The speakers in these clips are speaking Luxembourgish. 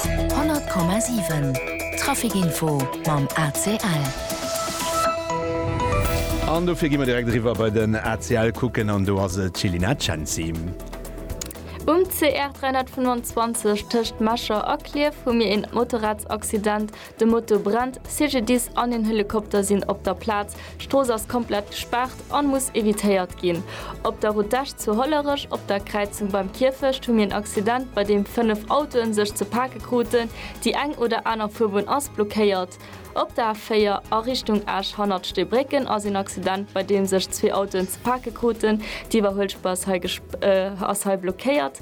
100,7 Trafic info mam ACL. An dofir gi mer direkt eriwwer bei den ACL kucken an do ass et d'Jelina Cenci. Um CR 325 tëscht Mecher a Klierf hu mir een Motorradsaccident. De Moto brennt, CGDIS an een Helikopter sinn op der Plaz. D'Strooss ass komplett gespaart an muss evitéiert ginn. Op der Route d'Esch zu Hollerech op der Kräizung beim Kierfecht hu mir en Accident bei deem 5 Autoen sech ze pake kruten. Déi eng oder aner Fuerbunn ass blockéiert. Op der A4 a Richtung Esch hannert Steebrécken ass een Accident bei deem sech zwee Autoen ze pake kruten. D'Iwwerhuelspur ass hei blockéiert.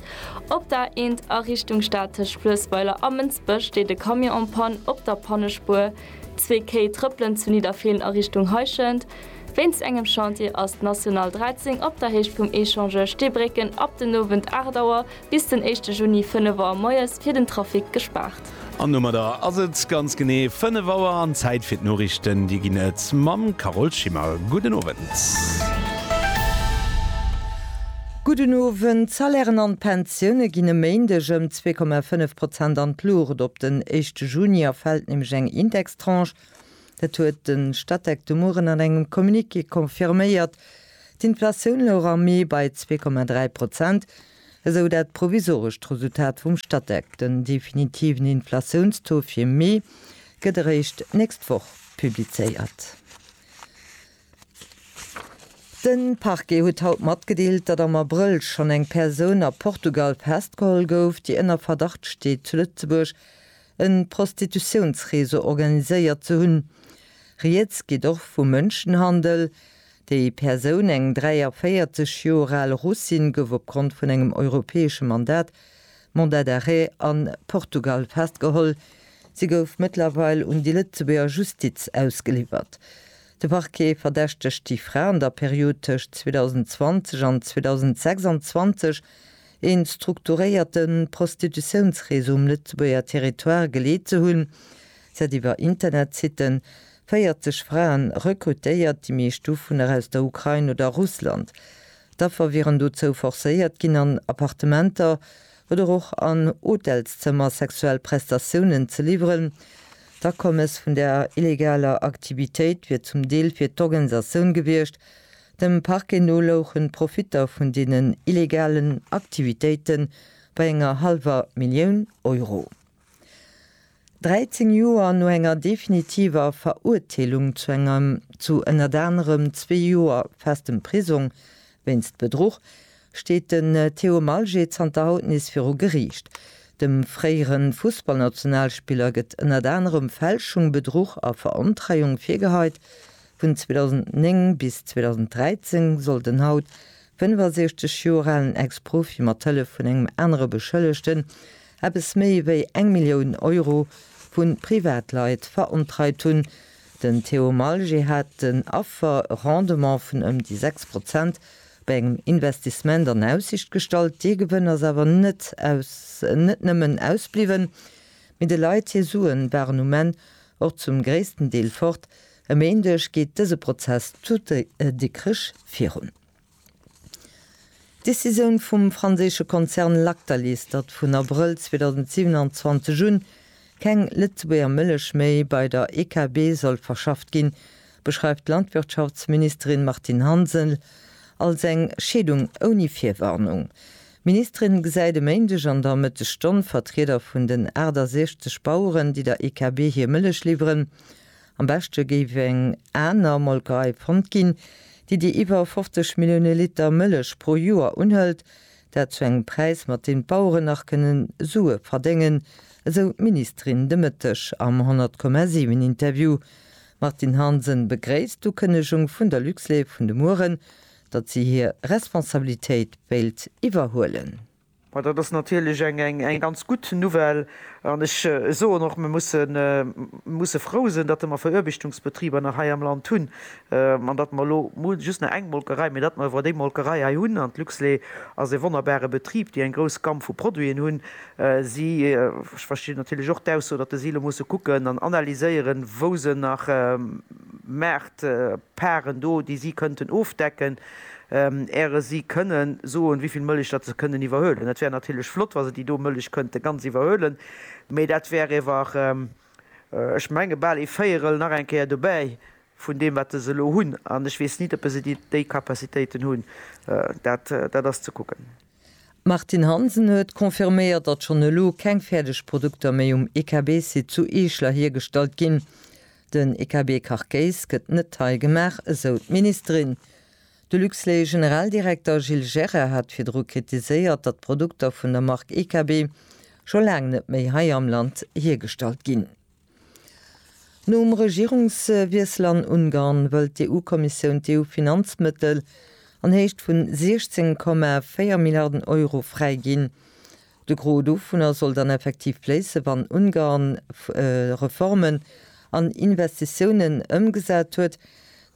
Op der Aent a Richtung Stad tëscht Fluessweiler a Mënsbech steet e Camion en Panne op der Pannespuer. Zwee Kéi trëppelen zu Nidderfeelen a Richtung Heischent. Wéinst engem Chantier ass d'National 13 op der Héicht vum Echange Steebrécken ab den Owend 8 Auer bis den éischte Juni 5 Auer moies fir den Trafic gespaart. An domadder ass et ganz genee 5 Auer an Zäit fir d'Noriichten. Dir ginn et mam Carole Schimmer. Gudden Owend. Gudden Owend. D'Salairen an d'Pensioune ginn e Méindeg ëm 2,5 Prozent an d'Luucht. Op den éischte Juni erfält nämlech eng Indextranche. Dat huet de Statec de Mueren an engem Communiqué confirméiert. D'Inflatioun louch am Mee bei 2,3 Prozent. Esou dat provisorescht Resultat vum Statec. Den definitiven Inflatiounstaux fir Mee gëtt eréischt d'nächst Woch publizéiert. De Parquet huet haut matgedeelt, datt am Abrëll schonn eng Persoun a Portugal festgeholl gouf, déi ënner Verdacht steet, zu Lëtzebuerg e Prostitutiounsreseau organiséiert ze hunn. Rieds geet och vu Mënschenhandel. Déi Persoun, eng 43 Joer al Russin, gouf opgrond vun engem europäesche Mandat, Mandat d'arrêt, a Portugal festgeholl. Si gouf mëttlerweil un déi Lëtzebuerger Justiz ausgeliwwert. De Parquet verdächtegt déi Fra an der Period tëscht 2020 an 2026 ee strukturéierte Prostitutiounsreseau um Lëtzebuerger Territoire geleet ze hunn. Si hat iwwer Internetsitten 40 Fraen rekrutéiert, déi meescht dovunner aus der Ukrain oder Russland. D'Affer wieren dozou forcéiert ginn, an Appartementer oder och an Hotelszëmmer sexuell Prestatiounen ze liwweren. D'Akommes vun där illegaler Aktivitéit wier zum Deel fir d'Organisatioun gewiescht. Dem Parquet no louchen d'Profitter vun deenen illegalen Aktivitéite bei enger hallwer Millioun Euro. 13 Joer no enger definitiver Verurteelung zu engem zu ënnert anerem zwee Joer festem Prisong wéinst Bedruch, steet den Theo Malget zanter haut nees viru Geriicht. Dem fréiere Fussballnationalspiller gëtt ënnert anerem Fälschung, Bedruch a Verontreiung virgeheit. Vun 2009 bis 2013 soll den haut 65 Joer alen Ex-Profi mat Hëllef vun engem anere Beschëllegten eppes méi wéi eng Millioun Euro vu Privatleit verontreit hunn. Den Theo Malger hat den Affer e Rendement vun ëm déi 6 Prozent bei engem Investissement an Aussicht gestallt. Dee Gewënn ass awer net aus net nëmmen ausbliwwen, mee de Leit hir Suen waren um Enn och zum gréissten Deel fort, E Méindeg geet dëse Prozess zu Dikrech virun. D'Decisioun vum franséische Konzern Lactalis, datt vun Abrëll 2027 un keng Lëtzebuerger Mëllech méi bei der EKB soll verschafft ginn, beschreift d'Landwirtschaftsministerin Martine Hansen als eng Scheedung ouni Virwarnung. D'Ministerin gesäit e Méindeg an der Mëttesstonn Vertrieder vun den 68 Baueren, déi der EKB hir Mëllech liwweren. Am beschte géif eng aner Molkerei fonnt ginn, déi déi iwwer 50 Millioune Liter Mëllech pro Joer unhëlt, dat zu engem Präis, mat deem d'Baueren nach kënnen Sue verdéngen, esou d'Ministerin de Mëtteg am 100,7 Interview. D'Martine Hansen begréisst d'Ukënnegung vun der Luxlait vun de Mueren, datt si hir Responsabilitéit wéilt iwwerhuelen. Ma dat ass natierlech eng ganz gutt Nouvelle. An ech soen och, mir musse frou sinn, datt mer Veruerbechtungsbetriber nach hei am Land hunn an datt mer elo just nach eng Molkerei, mee datt mer iwwer déi Molkerei hei hunn. An d'Luxlait ass ee wonnerbare Betrib, déi eng grouss Gamm vu Produiten hunn. Si, ech verstinn natierlech och d'Ausso, datt si elo musse kucken an analyséieren, wou se nach Maartparten do, déi si kënnten ofdecken. äre si kënnen soen, wéi vill Mëllech datt se kënnen iwwerhuelen. Et wär natierlech flott, wa se déi do Mëllech kënnte ganz iwwerhuelen, mee dat wär ewer, ech menge bal ee Véierel nach eng Kéier dobäi vun deem, wat se elo hunn. An ech weess nit, oppe se déi Capacitéiten hunn. Dat, dat ass ze kucken. D'Martine Hansen huet confirméiert, datt schonn elo keng fäerdeg Produkter méi um IKB-Site zu Eeschler hiergestallt ginn. Den IKB-Kachkéis gëtt net hei gemaach, esou d'Ministerin. De Luxlait-Generaldirekter Gilles Gera hat virdru kritiséiert, datt d'Produkter vun der Mark EKB scho laang net méi hei am Land hiergestallt ginn. Nom Regierungswiessel an Ungarn wëllt d'EU-Kommissioun d'EU-Finanzmëttel an Héicht vun 16,4 Milliarden Euro fräiginn, De Gros dovunner soll dann effektiv fléissen, wann Ungarn Reformen an Investitiounen ëmgesat huet.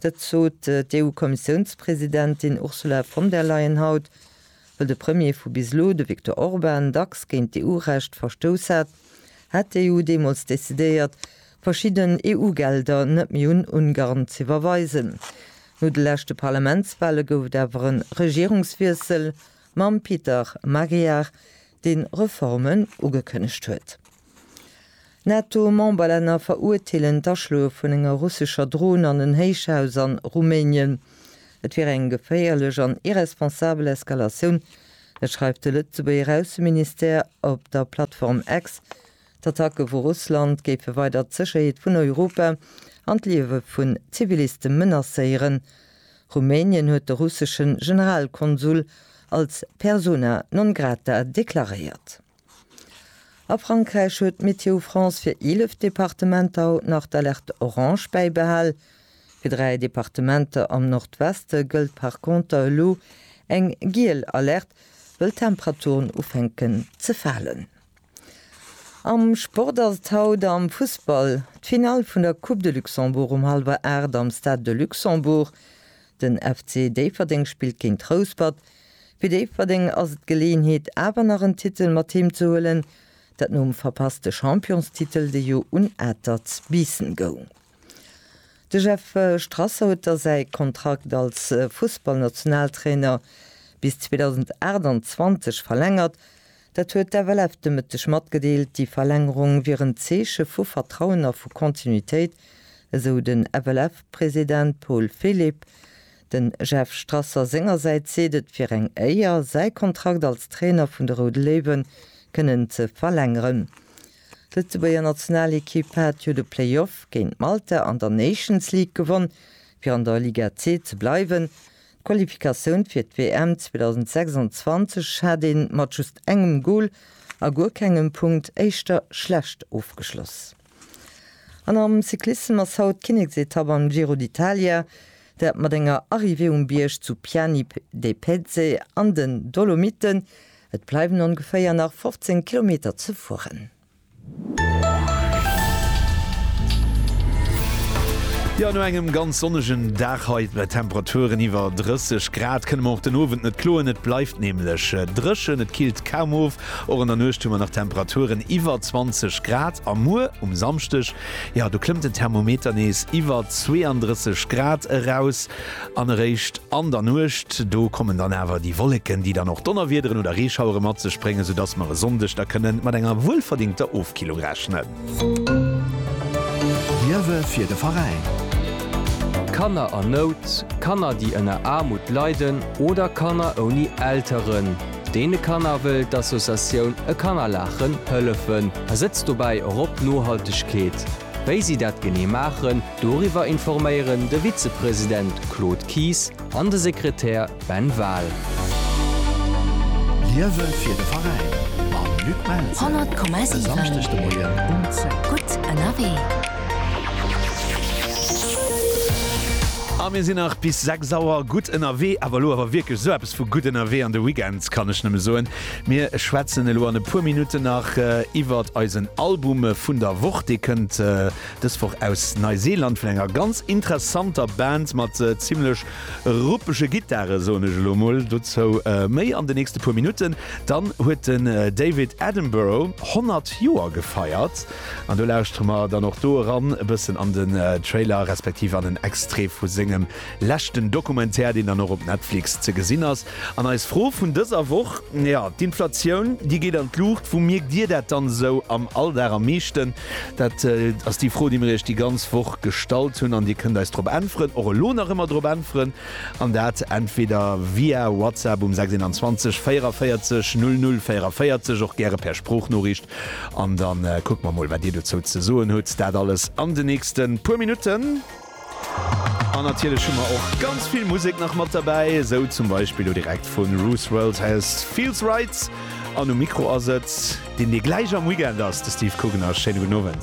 Dat sot d'EU-Kommissiounspresidentin Ursula von der Leyen haut, wëll de Premier vu bis elo, de Viktor Orban, dacks géint d'EU-Recht verstouss hat, hat d'EU deemools decidéiert, verschidden EU-Gelder net méi un Ungarn z'iwwerweisen. No de leschte Parlamentswale gouf et awer e Regierungswiessel mam Peter Magyar, deen Reformen ugekënnegt huet. NATO-Memberlänner verurteelen d'Aschloe vun enger russescher Dron an en Héichhaus an Rumänien. Et wier eng geféierlech an irresponsabel Eskalatioun, dat schreift de Lëtzebuerger Ausseministère op der Plattform X D'Attacke vu Russland géife weider d'Sécherheet vun Europa an d'Liewe vun Ziviliste menacéieren. Rumänien huet de russesche Generalkonsul als persona non grata deklaréiert. A Frankräich huet Météo France fir 11 Departementer haut nach d'Alerte orange bäibehal. Fir dräi Departementer am Nordweste gëllt par conter elo eng giel Alerte, wëll d'Temperaturen ufänken ze falen. Am Sport ass et haut am Fussball d'Finall vun der Coupe de Luxembourg um hallwer 8 am Stade de Luxembourg. Den FC Déifferdeng spillt géint Rouspert. Fir Déifferdeng ass et d'Geleeënheet awer nach en Titel mat heem ze huelen, dat nom verpasste Championstitel de jo un Atert Biissen goung. De Jeff Strasser huet da säi Kontrakt als Fussballnationaltrainer bis 2028 verlängert. Dat huet d'FLF de Mëtteg matgedeelt. Déi Verlängerung wier en Zeeche vu Vertrauen a vu Kontinuitéit, esou de FLF-President Paul Philipp. De Jeff Strasser sengersäits seet et wier eng Éier, säi Kontrakt als Trainer vun de Roude Léiwe kënnen ze verlängeren. D'Lëtzebuerger Nationalekipp hat jo de Playoff géint Malta an der Nations League gewonn, fir an der Liga C ze bleiwen. D'Qualifikatioun fir d'WM 2026 hat ee mat just engem Gol a guer kengem Punkt éischter schlecht ofgeschloss. An am Cyclissem ass haut d'Kinneksetapp am Giro d'Italia, dat mat enger Arrivée um Bierg zu Piani de Pezze an den Dolomiten. Et bleiwen ongeféier nach 15 Kilometer ze fueren. Jo, no engem ganz sonnegen Dag hei bei Temperaturen iwwer 30 Grad kënne mer och den Owend net kloen. Et bleift nämlech äh, dréchen, et killt kaum of. Och an der Nuecht hu mer nach Temperaturen iwwer 20 Grad. A muer um Samschdeg, ja do klëmmt den Thermometer nees iwwer 32 Grad eraus. An eréischt an der Nuecht, do kommen dann awer déi Wolleken, déi dann och Donnerwiederen oder Reeschauere mat sech bréngen, soudass mer e Sonndeg da kënnen mat enger wuelverdingter Ofkillung rechnen. Liewe fir de Veräin. Kanner a Nout, Kanner déi ënner Aarmut leiden oder Kanner ouni Elteren, deene Kanner wëll d'Associatioun E Kannerlaachen hëllefen a setzt dobäi och op Nohaltegkeet. Wéi si dat genee maachen, doriwwer informéieren de Vizepresident Claude Kies an de Sekretär Ben Wahl. Liewe fir de Veräin mam Luc Melzer. 100,7 E Samschdeg de Moien um 10. Gutt ënnerwee. A mir sinn nach bis 6 Auer gutt ënnerwee. Awer elo awer wierklech esou eppes vu gutt ënnerwee an de Weekend, kann ech nëmme soen. Mir schwätzen elo an e puer Minutten nach iwwert eisen Album vun der Woch. Dee kënnt dës Woch aus Neiseeland vun enger ganz interessanter Band mat zimmlech ruppege Gittare, soen ech elo mol. Dozou méi an den nächste puer Minutten. Dann huet den David Attenborough 100 Joer gefeiert an do lauschtere mer dann och do eran e bëssen an den Trailer respektiv an en Extrait vu sengem Leschten Documentaire, deen dann och op Netflix ze gesinn ass. An eis Fro vun dëser Woch, jo, d'Inflatioun, déi geet an d'Luucht. Wou mierkt Dir dat dann esou am Alldag am meeschten? Dat ass déi Fro, déi mir Iech déi ganz Woch gestallt hunn. An Dir kënnt eis drop äntweren, och elo nach ëmmer drop äntweren, an dat entweder via WhatsApp um 610 44 00 44, och gäre per Sproochnoriicht. An da kucke mer mol, wat Dir dozou ze soen hutt. Dat alles an den nächste puer Minutten. An natierlech hu mer och ganz vill Musek nach mat derbäi, esou zum Beispill lo direkt vu Ruth's World House Feels Right. An um Mikro ass et, deen dee gläich am Weekend ass, de Steve Kugner. Schéine gudden Owend.